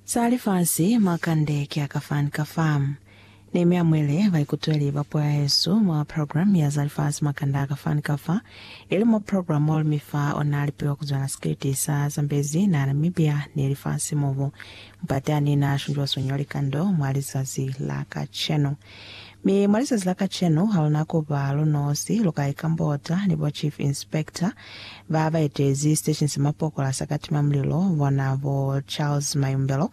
Za lifasi mwa kande ki a ka fan ka fa. Nehemia mweli baikutweli ba puo ya Yesu mwa program ya za lifasi mwa kande a ka fan ka fa, ili mwa program molu mi fa ona lipiwa kuzwela sikiliti sa zambezi na Namibia ni lifasi mobu mpate ani na shunjwa sonyo likando mwa lizazi la kacenu. Mi mwa lizazi la kacenu, ha luna ku ba lu nosi, lu ka ikambota ni bo Chief Inspector ba ba etezi Station sa Mapokola sa Katima Mulilo, bona bo Charles Mayumbelo,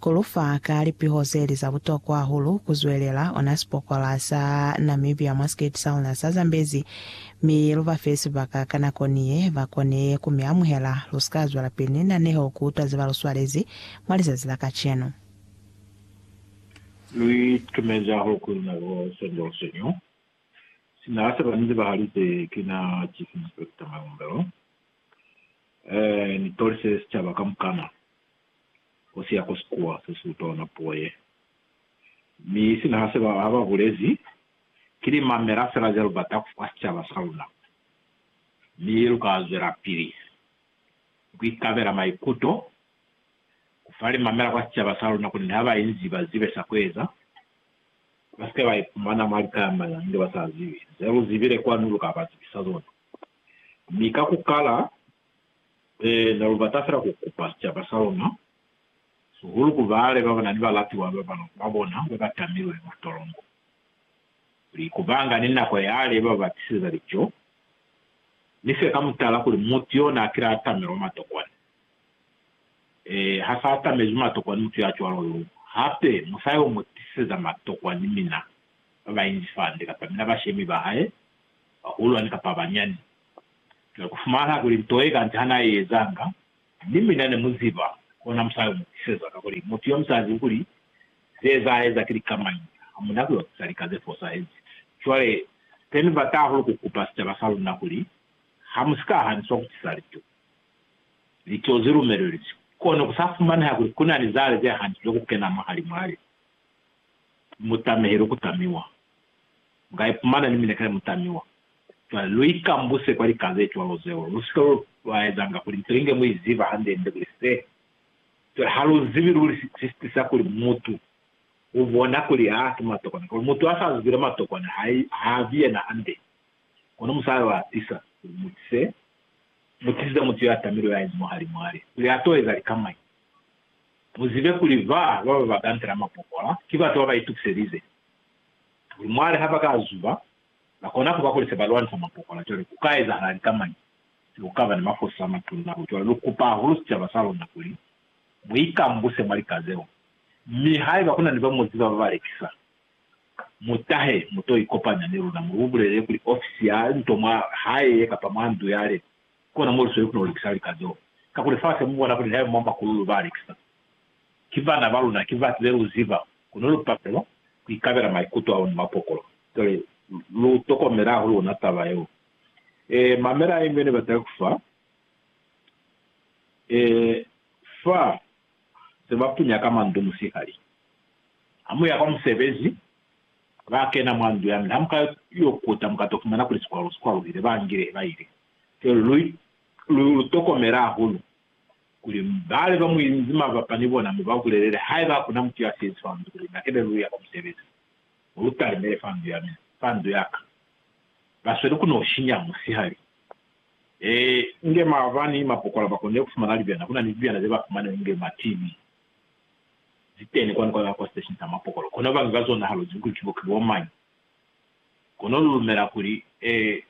ku lu fa ka lipiho ze li za butokwa hahulu ku zwelela ona sipokola sa Namibia mwa Skate sa luna sa Zambezi, mi lu ba fe sibaka ka nako ni ye ba kone ku mi amuhela. Lu si ka zwelapili ni naneho ku utwa ze ba lu swalezi mwa lizazi la kacenu. Lu itumeza hahulu kuli luna bo Sandra Osenyo, sina a seba ni zebahalize kina Chief Inspector Malumbelo, eeh ni tolise sicaba kamukana ku siya ku sikuwa se si utona puo ye. Mi sina ha seba ha ba bulezi, ki li mamela fela ze lu bata kufa sicaba sa luna, mi lu ka zwelapili ku ikabela maikuto Ku fa limamela kwa sicaba sa luna kuli haba inzi ba zibe sa kueza, ba sike ba ipumana mwa lika ya mana nge ba sa zibi ze lu zibile kwanu lu ka ba zibisa zona. Mi ka ku kala, ne lu bata fela ku kupa sicaba sa luna, sihulu ku baale ba bana ni balatiwa ba bana ba bona ba ba tamilwe mwa tolongo, kuli ku ba nga ni nako yale ba ba tiseza lico, mi se ka mutala kuli mutu yona a kile a tamilwa mwa tokwana. Ee, ha sa atamezi matokwa ni mutu ya cwalo yo. Hape, mu sa yo mu tisiseza matokwa ni mina, ba bainzi fande, kapa mina bashemi ba hae, bahulwani kapa banyani. Cwale, ku fumana kuli nto ye kanti ha na i ezanga, ni mina ne mu ziba, kona mu sa yo mu tisiseza, kakuli mutu yo mu sa zibi kuli ze za eza ki lika mañi, ha mu na ku yo tisa lika ze fosahezi. Cwale, se ni bata hahulu ku kupa sicaba sa luna kuli, ha mu si ka haniswa ku tisa lituku. Lituho ze lumelelizwe, kono ku sa fumaneha kuli ku na ni zale ze hantu ze ku kena mwahalimwale mu tameheli ku tamiwa. Mu ka ipumana ni mineka ye mu tamiwa. Cwale, lu ikambuse kwa lika ze cwalo zeo. Lu si ka lwa ezanga kuli nto inge mu i ziba hande-nde kuli se. Cwale, ha lu zibi luli si si tisa kuli mutu u bona kuli ha si mwatokwana. Kono mutu ha sa zibile mwatokwana, ha, ha vi yena hande. Kono mu sa lwa tisa kuli mu tise Mutisize mutu ya tamilwe ya inzi mwahali mwale kuli a to eza likamwai. Mu zibe kuli ba ba ba bagantela mapokola ki batu ba ba itukiselize kuli mwale ha ba ka zuba, ba kona ku ba kuli se ba lwanisa mapokola cwale ku ka ezahala likamwai se ku ka ba ni mafosi a matuna hahulu. Cwale lu kupa hahulu sicaba sa luna kuli mu ikambuse mwa lika zeo, mi haiba ku na ni ba mu ziba ba ba lekisa, Mutahe mu to ikopanya ni luna, mu lu bulelele kuli ofisi ya nto mwa hae ye kapa mwa ndu ya lena kona mo lu sweli ku no lekisa lika zeo. Kakuli fa se mu bona kuli haeba mwa makululu ba lekisa, ki bana ba luna, ki batu be lu ziba, kono lu palelwa ku ikabela maikuto a bona mwa pokolo. Cwale lu tokomela hahulu ona taba yeo. Ee, mamela inge ne bataka ku fa. Ee, fa se ba punya ka mwa ndu musihali. Ha mu ya kwa musebezi, ba kena mwa ndu ya mi ha mu ka yo kuta mu ka to fumana kuli sikwalu si kwaluhile. Ba ngile ba ili, Celu, lu, lu, lu tokomele hahulu kuli bale ba mu inzi mabapa ni bona mu ba bulelele haiba ha ku na mutu ya siezi fa ndu kuli na kene lu ya kwa musebezi. Mu lu talimele fa ndu ya mina, fa ndu ya ka. Ba sweli ku no shinya musihali. Ee, inge mava ni mapokola ba konile ku fumana libyana. Ku na ni libyana ze ba fumana inge ma TV zi teni kwani kwa, kwa siteshini sa mapokola. Kono ba nga zona halo zibi kuli ki bo, ki bo mañi. Kono lu lumela kuli, ee,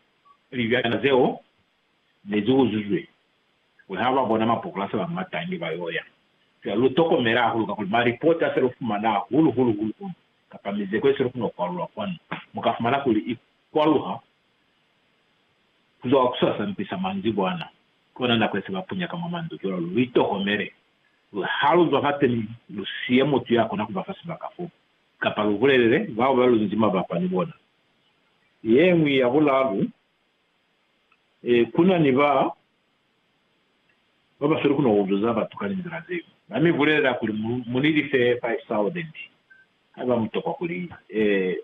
libyana zeo ne zi uzuzwe, kuli ha ba bona mapokola se ba mata inge ba y'o ya. Fela lu tokomele hahulu kakuli malipota a se lu fumana hahulu-hulu, hulu-hulu, kapa mizeko ye se lu kona ku kwalula kwanu, mu ka fumana kuli i kwaluha Ku zwa ku swasa mpi sa manzibwana, kona nako ye se ba punya ka mwa mandu. Cwalo lu itohomele, luli, Ha lu zwa fateni, lu siye mutu ya kona ku ba fa sibaka fo, kapa lu bulelele bao ba lu nzi mabapa ni bona. Ye ñwi ya bulalu, Ee, ku na ni ba ba ba sweli ku no uzwa za batu ka linzila ze ñwi. Ba mi bulelela kuli, Mu ni life 5000, haiba mu tokwa kuli. Ee.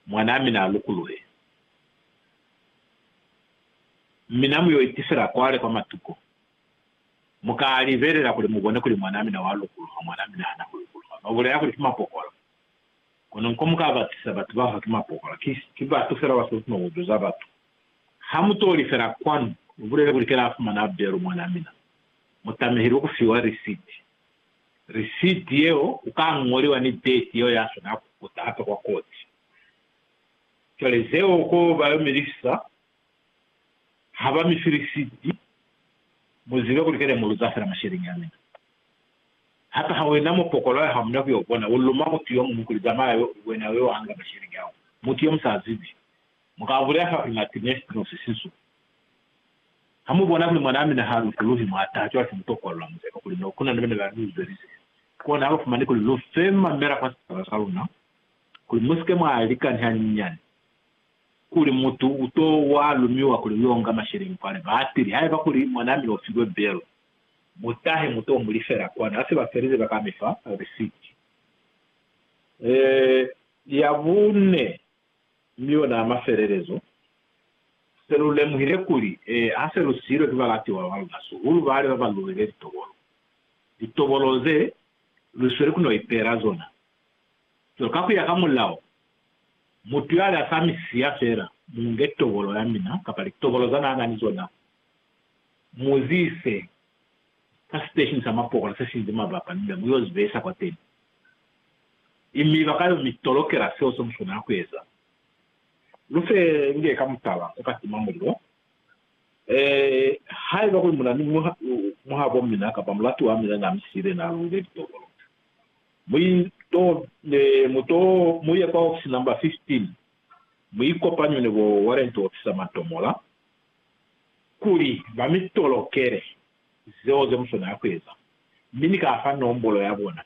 Mwanaa mina a lukuluhe, mi na mu yo itisela kwale kwa matuko. Mu ka libelela kuli mu bone kuli mwanaa mina wa lukuluha, mwanaa mina hana ku lukuluha. Ba bulela kuli ki mapokola. Kono nko mu ka batisa batu ba fa ki mapokola. Ki, ki batu fela ba sa lukuma ku tusa batu. Ha mu toli fela kwanu, mu bulele kuli, Ki la fumana belu, mwanaa mina. Mu tamehilwe ku fiwa risiti. Risiti yeo u ka ñoliwa ni deti yeo ya swanela ku kuta hape kwa koti. Cwale zeo ko ba yo mi lifisa, ha ba mi fi risiti, mu zibe kuli kene mu luza fela masheleñi a mina. Hape ha wena mupokolo ya hamuna ku yo bona, u luma mutu yo muñwi kuli, Zamaya yo, wena u yo hanga masheleñi ao. Mutu yo mu sa zibi. Mu ka bulela fa primatimestrose sisu. Ha mu bona kuli mwanaa mina ha lutuluhi mwa taha, cwale se mu tokolla muzeba kuli no kuna ni bene ba lu zwelise kona ha lu fumani kuli lu fe mamela kwa sicaba sa luna, kuli mu si ke mwa lika ni hanyinyani kuli mutu u to wa lumiwa kuli u yo nga masheleñi kwa lebatili. Haiba kuli mwanaa mina u filwe belo, mu tahe mu to mu lifela kona. Ha se ba felize, ba ka mi fa risiti ya bune. Mi ona a mafelelezo, se lu lemuhile kuli, ee, ha se lu siilwe ki balatiwa ba luna, sihulu bale ba ba luwile litobolo, litobolo ze lu sweli ku no ipeela zona. Cwale, ka ku ya ka mulao, mutu yale a sa mi siya fela, mu nge tobolo ya mina, kapa litobolo za n'a na ni zona, mu zi ise ka siteshini sa mapokola se sinzi mabapa, ni nda mu y'o zi behisa kwateni. Mi mi bakayo mi tolokela seo se muswanela kueza. Lu fe nge ka mutala ku ka tima mulilo. Ee, haiba kuli muna ni muhabo mina kapa mulatuwa mina na mi siile, na luile litokolo. Mu to, mu to, mu ye kwa ofisi number 15, mu ikopanywe ni bo warrant officer Mantomola, kuli ba mi tolokele zeo ze muswanela kueza. Mi ni ka fa nombolo ya bona.